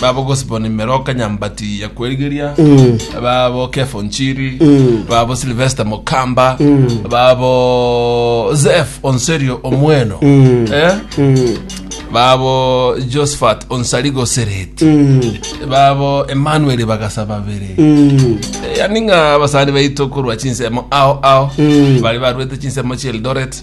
babo Gosbon Meroka Nyambati ya Kwerigeria babo Kefo Nchiri babo Sylvester Mokamba babo Zef Onserio Omweno eh? babo Josephat Onsarigo Sereti babo Emmanuel Bagasa babere yani ng'a abasani baito korwa chinsemo ao ao bari barwete chinsemo chia Eldoret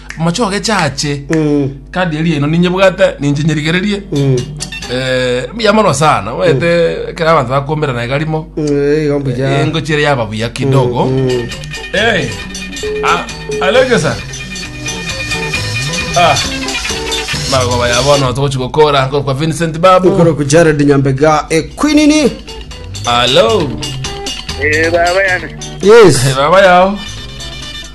Amache ogechache Eh, kandi eria ino ninyebwate ninche nyerigererie mm, eh, mbuya mono sana wete kera abanto bakombera naye garimo eh, igo mbuya. engo chire yaba buya kidogo Mm, Eh, a- aleke sa Ah, magoba ya bono togochi gokora nkoro kwa vincent babu ikoro ku jared nyambega ekwinini alo Eh, baba yana. yes baba yao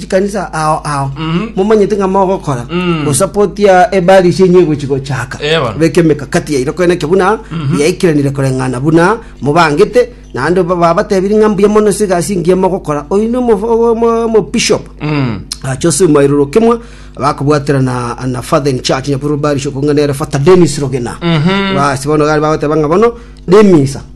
chikanisa ao ao Mhm. momanyete ng'a mogokora Mm. gosapoti ya ebari ase enye egochi gochaka Eh, bono. beka emekakati yaino koene eke buna yaikiranire koreng'ana buna mobangete naende ba- babatebiri ng'a mbuya mono ase egasi engiya mogokora oino omobishop Mm. achose omairoro kimwe bakobwatera na na father in church nyakuru bari shokongana ere father Dennis Rogena Mhm. basi bono gari bagoteba ng'a bono nemisa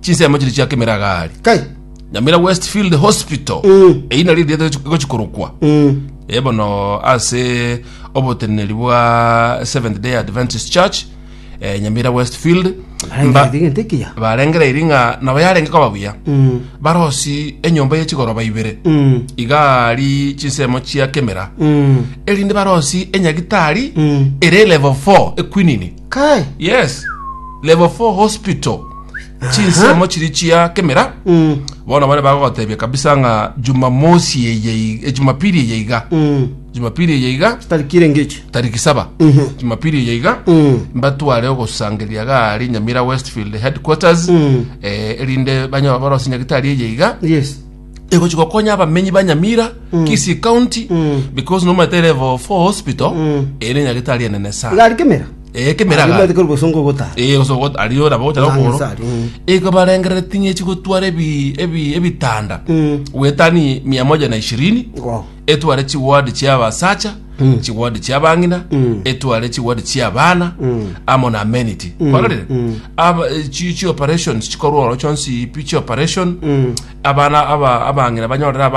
chinsemo chiria chia Kemeragari Kai. Nyamira Westfield Hospital Eh. eina riri riete gochikorokwa Eh. Eh, bono ase oboteneneri bwa Seventh Day Adventist Church eh, Nyamira Westfield Mba- Arengete gente kiya. barengereiri ng'a nabo yarenge koba buya Mm. barosi enyomba ye chigoroba ibere Mm. igari chinsemo chia kemera Mm. erinde barosi enyagitari Mm. ere level 4 ekwinini Kai. yes level 4 hospital chinsemo chiri chia kemera Mm. bono bare bagotebia kabisa ng'a jumamosi eye i- eh, jumapili eye iga Mm. jumapili eye iga Tarikire ngechi. tariki saba Mhm. jumapili eye iga Mm. mbatware ogosangeria gari nyamira westfield headquarters Mm. eh, erinde banya- barose nyagitari eye iga Yes. egochi gokonya abamenyi ba nyamira kisii county because nomaete level 4 hospital ere nyagetari enene sana iga ari kemera Eh, kemera Ari iga. omanyete kore bosongo ogotara Eh, goso goto- aria ora bagocha Nang'e nokoro sari, mm. igo barengerere ting'echi gotwara ebi- ebi- ebitanda Mm. wetani mia moja na ishirini Wow. etware chigwadi chi'abasacha Mm. chigwadi chi'abang'ina Mm. etware chigwadi chi'abana Mm. amo na amenity barorire Mm. Aba- eh, chi- chioperations chikorwa oro chionsi pi chioperation Mm. abana aba- abang'ina banyorere abana